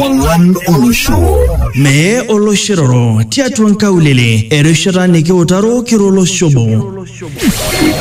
Olan Olosho. Mee oloshiroro tiatua nkaulele erishata nikiutaro kiro oloshobo.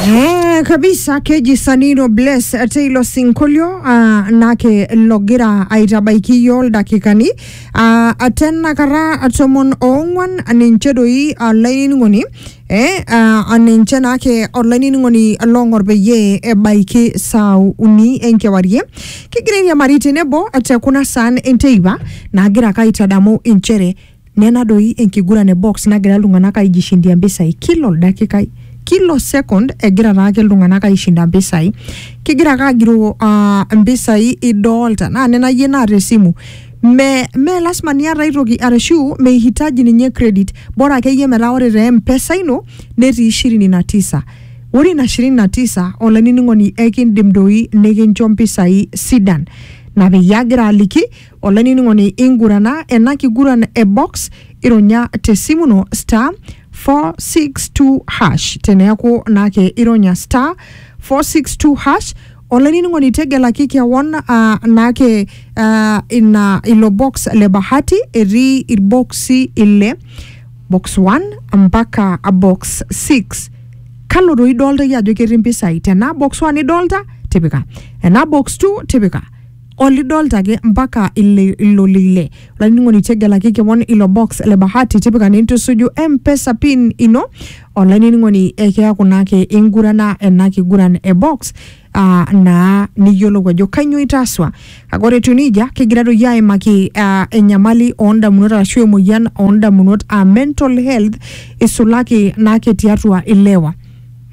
Eh, kabisa keji sanino bless ate ilo sinkolio ah, nake logira aitabaiki iyioo ildakikani ah, ate enakata tomon oong'uan ninche doi ah, lainining'oni Eh, uh, ninche naake olainining'oni long'or peyie ebaiki saa uni enkewarie kigira airiamari tenebo te kuna saan enteipa naagira ake aitadamu inchere nena doi enkiguran e box nagira iltung'anak aijishindia mpisai kila oldakikai kila second egira taake iltung'anak aishinda mpisai kigira ake agiroo uh, mpisai idolta naa nena yie naata esimu Me, me lasima niata ai toki arashu meihitaji ninye credit bora akeyie metaa ore te mpesa ino netii ishirini na tisa ore ina shirini na tisa olainining'oni ekindim doi nikincho mpisai sidan na peyie agira aliki olainining'oni ingurana ena kiguran e box ironya te simu ino star 462 hash teneaku naake ironya star 462 hash Olainining'oni tegelaki kewon aa naake aa ina ilo box le bahati etii irboksi ile box 1 mpaka box 6 kalo doi idolta iyie ajo ketii mpisai tenaa box 1 idolta tipika enaa box 2 tipika olidolta ake mpaka ile ilo lile olainining'oni tegelaki kewon ilo box le bahati tipika nintusuju mpesa pin ino Olainining'oni ekeaku naake ingurana ena kiguran e box aa naa niyiolou ajo kainyoo itaaswa. Kake ore etiu neijia kigira doi aimaki aa enyamali oondamunot arashu emoyian oondamunot aa mental health isulaki naake tiatua ilewa.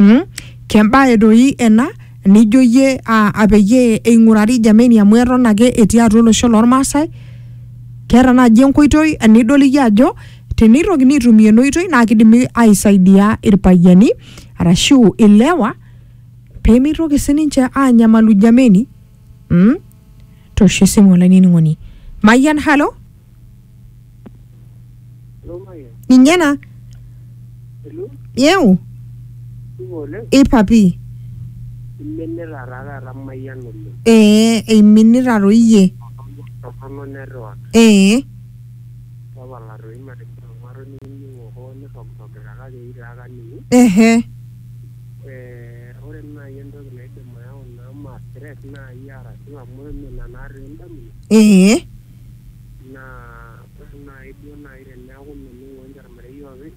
Mm? Kembae doi ena nijo iyie aa peyie eing'urari jameni amu eton ake etii atua olosho lormaasai. Keeta naaji enkoitoi nidol iyie ajo Teneitokini aitumia ena oitoi naa kidimi aisaidia irpayiani arashu ilewa pemeitoki sininche aanyamalu jameni. Mm? Tosho esimu olainining'oni. Mayian halo? Ninye ena? Yeu? Ipa pii. Iminita taa taata mayian oleng. Ee eiminita toi iyie. Torrono network. Ee. Tapala toi matijing'a ng'uarro nikining'o hoo nirrogirrogita kake eitaa kaning'u. Ehe. Ee ore naai entoki naidim ayau naa ma stress naai arashu amu eme ina naa toi indamunot. Ee. Naa ore naai duo naai teneeku mening'o ninche olmarei oopeny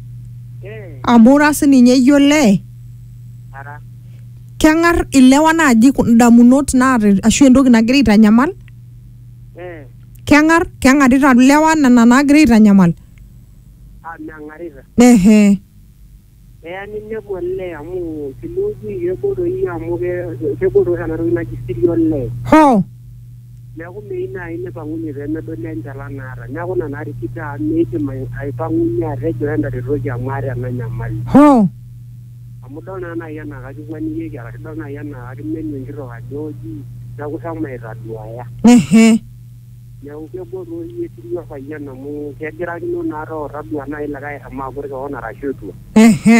Eh, amu ira sininye iyie olee ara. keng'ar ilewa naaji ku- indamunot naata ashu entoki nagira aitanyamal Eh, keng'ar keng'arita ilewa nena naagira aitanyamal ah, meng'arita. ehe Eya ninepu olee amu teniuji kegol doi amu ke- kegol doi oshi ena toki naji siri olee. hoo Neaku meyieu naaji neipang'unye pee medoli enchalan naata. Neaku ina narikito amu meidim aipang'unye atejo entaretoki amu aata ena nyamali. Hoo! Amu idol naa naaji anaa kakikwanikieki arashu idol naaji anaa kakimenu enkitok ajo oji neaku shomo aitaduaya. Ehe. Neaku kegol taa oldia etirri opayian amu kegirakino naa too taduaa naaji likae eshomo agut kewon arashu etua. Ehe.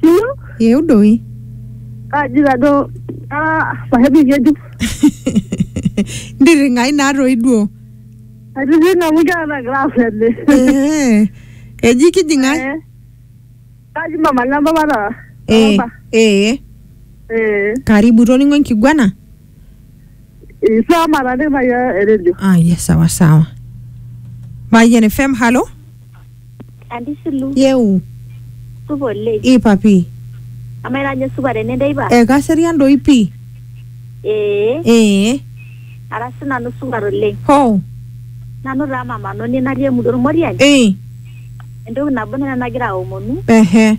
Siyiok Yeu doi. kaji tajo ah, pahebu ng'ejuk. Ntirring'ai naa toi duo. Aitijing'a amu keeta class ele. Eh, Eji kijing' ai. Eh, Kaji mama le mpapa taata. Eh, Mpapa. eh, Eh. karibu itoning'o enkiguana? Isa mara ne ba ya redio. aya sawa sawa mayian fm halo Antisilu, yeu supa oleng. ipapi Amaa ira ajo supa tene teipa? ekaserian doi pii Ee, ee ara sinanu supat oleng. ho Nanu taa mamanoni natii emurua Ormoriani. ee Entoki nabo nena nagira aomonu ehe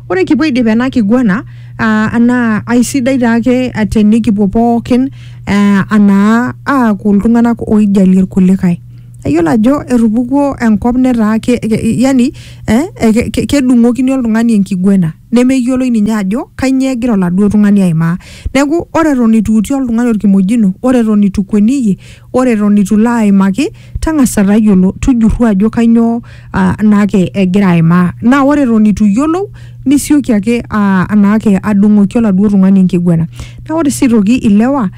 Ore kipuo aidip ena kiguana uh, naa aisidai taake tenikipuo pookin uh, anaa aaku iltung'anak oijalie irkulikae ayiolo ajo etupukuo enkop netaa ke, ke, yani eh, ke, ke, kedung'okini oltung'ani enkiguena nemeyioloi ninye ajo kainyoo egira oladuo tung'ani aimaa neeku ore eton itu iutie oltung'ani orkimojino ore eton itu kueniyie Ore eton eitu ilo aimaki, tang'asa tayiolo, tujurru ajo kainyoo naake egira aimaa. Naa ore eton eitu iyiolou, nisioki ake naake adung'oki oladuo tung'ani enkiguana. Naa ore sii aitoki ilewa,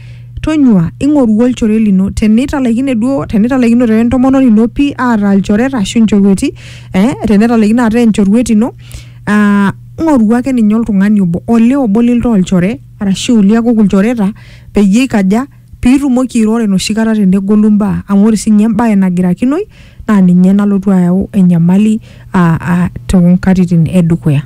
tonyua ing'oru olchore lino tenitalaikine duo tenitalaikinote we ntomononi ino pii ataa ilchoreta ashu inchorweti ee tenitalaikine ataa enchorwet ino aa ng'oru ake ninye oltung'ani obo olee obo lintaa olchore arashu liakuku ilchoreta peyie ikaja? Piitumoki airoro enoshi kata tenegolu imbaa amu ore siininye embae nagirakinoi naa ninye nalotu ayau enyamali aa aa toonkatitin edukuya.